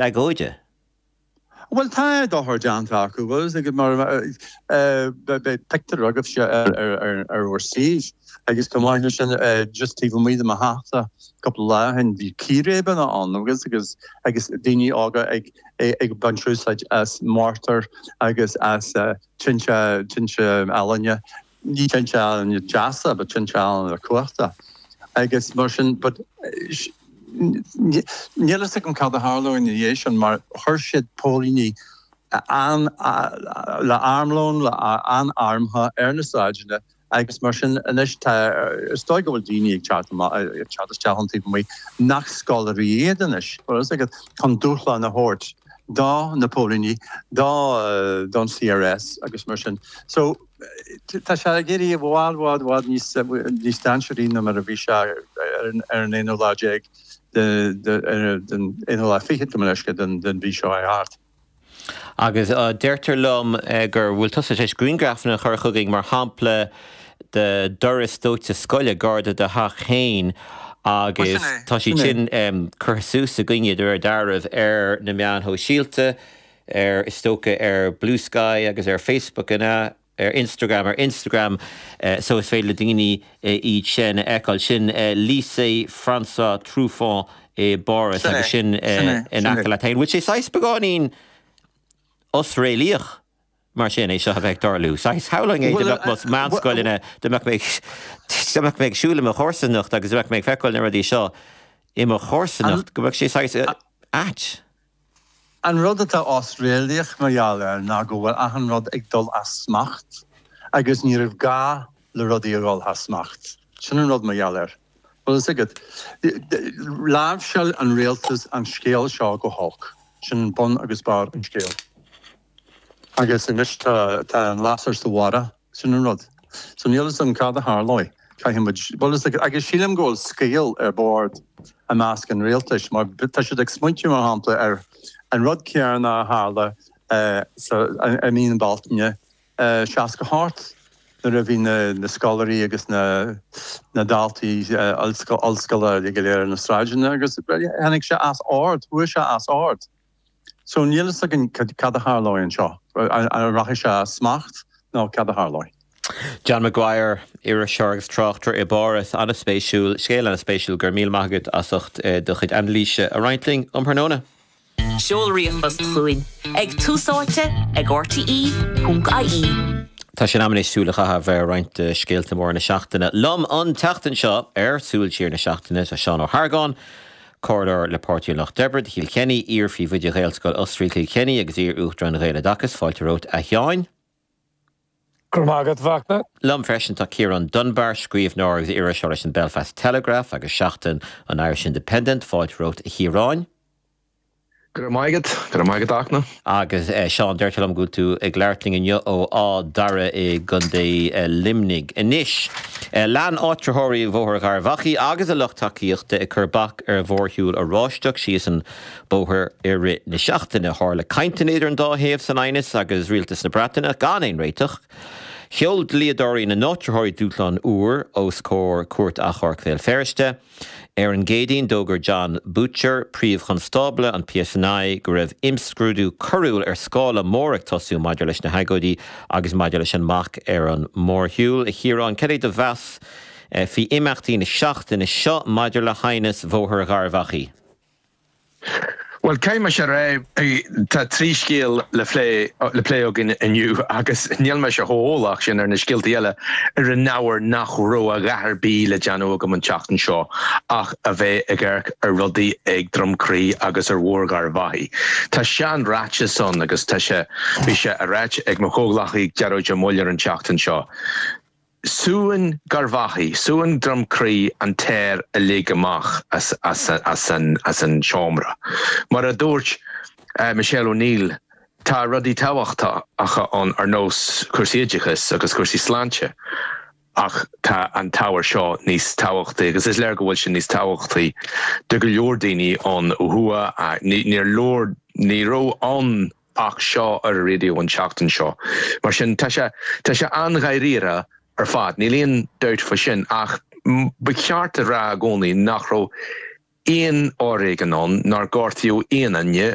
agóide? Bhuel, tá dochar déanta acu agus ag, mar a, beidh pictiúr agaibhse ar bhur suímh agus chomh maith leis sin, just taobh amuigh de mo theachsa cúpla lá ó shin, bhí círéibeanna ann agus, agus, agus daoine óga ag, ag baint úsáid as mortar agus as tinte, tinte ealaíne Ní tinte ealaíne deasa, but tinte ealaíne cumhachtacha agus mar sin, but níl fhios agam cad a tharlóidh ina dhiaidh sin mar chuir siad póilíní le armlón, an-armtha ar na sráideanna agus mar sin anois tá, is dóigh go bhfuil daoine ag teacht amach, ag teacht isteach ann taobh amuigh nach scoláirí iad anois, mar fhios agat, chun dúshlán a thabhairt do na póilíní, do, don CRS agus mar sin. So, Tá sé ag éirí i bhfad, bhfad, bhfad níos, níos dainséaraí ná mar a bhí sé ar an, ar an aonú lá déag de, de, den aonú lá fichead, gabh mo leithscéal, den, den mhí seo thart. Agus deirtear liom gur, bhfuil tusa tar éis grianghrafanna a chur chugainn, mar shampla de doras dóite scoile gar do do theach fhéin Bhuel, sin agus é, tá siad sin é. sin curtha suas againne, de réir dealraimh, ar na meáin shóisialta. ar, is dócha, ar Blue Sky agus ar Facebook, an ea? ar Instagram, ar Instagram so is féidir le daoine iad sin a fheiceáil. Sin Lycée François Truffaut i bPáras Sin é, agus sin sin é, in sin é. aice leat féin. Bhfuil sé saghas beagáinín osréalaíoch mar sin, é seo a bheith ag tarlú? Saghas shamhlaigh mé go Bhuel, mbeadh eh, más bhuel, meánscoileanna, go mbeadh mé ag go mbeadh mé ag siúl i mo chomharsanacht agus go mbeadh mé ag feiceáil na rudaí seo i mo chomharsanacht, go mbeadh sé saghas eh, a- ait. An rud atá osréalaíoch mar gheall air ná go bhfuil achan rud ag dul as smacht agus ní raibh gá le rudaí a dhul thar smacht. Sin an rud mar gheall air. Bhfuil a fhios agat. Láimhseáil an rialtas an scéal seo go holc. Sin bun agus barr an scéil. Agus anois tá an lasair sa bharrach, sin an rud. So níl 'fhios a'm cad a tharlóidh. Caithfidh muid, bhuel is ag, agus sílim go bhfuil scaoll ar bord i measc an rialtais mar tá siad ag smaointeamh mar shampla ar an rud céarna a tharla sa, i mí na Bealtaine 68 nuair a bhí na, na scoláirí agus na, na daltaí ollscoile go léir sna sráideanna agus tháinig sé as ord, chuaigh sé as ord. So níl a fhios againn cad a tharlóidh anseo, an rachaidh sé as smacht nó cad a tharlóidh. John Maguire, iriseoir agus tráchtaire i bPáras, an-spéisiúil, scéal an-spéisiúil. Go raibh míle maith agat as ucht do chuid anailíse a roinnt linn um thráthnóna. Seol ríomhphost chugainn ag tusaite ag rte.ie. Tá sé in am anois súil a chaitheamh ar roinnt de scéalta móra na seachtaine. Liom an tseachtain seo ar Súil Siar na Seachtaine tá Seán Ó hArgáin, Comhairleoir de chuid Pháirtí an Lucht Oibre do Chill Chainnigh, iar-phríomhoide Ghaelscoil Osraí Chill Chainnigh agus iar-Uachtarán an Ghaeloideachais, fáilte romhat a Sheáin. Go raibh maith agat, a Fhachtna. Liom freisin tá Ciarán Dunbar, scríbhneoir agus iriseoir leis an Belfast Telegraph agus Seachtain, an Irish Independent, fáilte romhat a Chiaráin. Go raibh maith agat. Go raibh maith agat, a Fhachtna. Agus a Sheáin, deirtear liom go bhfuil tú ag labhairt linn inniu ó Áth Dara i gContae Luimnigh. Anois, lean áitritheoirí Bhóthar Gharbh Achaidh agus a lucht tacaíochta ag cur bac ar mhórshiúl Oráisteach síos an bóthar i rith na seachtaine. Tharla cainteanna idir an dá thaobh san aighneas agus Rialtas na Breataine ach gan aon réiteach. Sheol dlíodóirí na n-áitritheoirí dúshlán úr os comhair Chúirt Achomhairc Bhéal Feirste. Ar an gCéadaoin, d'fhógair Jon Boutcher, Príomh-Chonstábla an PSNI, go raibh imscrúdú coiriúil ar scála mór ag tosú maidir leis na hagóidí agus maidir leis an mbac ar an mórshiúl. A Chiaráin, cad é do mheas faoi imeachtaí na seachtaine seo maidir le haighneas Bhóthar Gharbh Achaidh? Bhuel, caithfidh mé a rá, tá trí scéal le plé againn inniu agus níl mise chomh eolach sin ar na scéalta eile ar an ábhar nach raibh a dhath ar bith le déanamh agam an tseachtain seo ach a bheith ag amharc ar rudaí ag Droim Crí agus ar Bhóthar Gharbh Achaidh. Tá seanráiteas ann agus tá sé, bhí sé ráite ag mo chomhghleacaí Gearóid Ó Muilleoir an tseachtain seo, Súnn Garbh Achaidh, súnn Droim Crí an t-aer uilig amach as an seomra. Mar a dúirt Michelle O'Neill, tá rudaí tábhachtacha ann ar nós cúrsaí oideachais agus cúrsaí sláinte ach tá an t-ábhar seo níos tábhachtaí agus is léir go bhfuil sé níos tábhachtaí do go leor daoine ó thuaidh. Ní raibh ann Ach seo ar an raidió an tseachtain seo. Mar sin, tá sé, tá sé an-dháiríre ar fad, níl aon dabht fá sin, ach ba cheart a rá i gcónaí nach raibh aon fhoréigean ann, nár gortaíodh aon duine,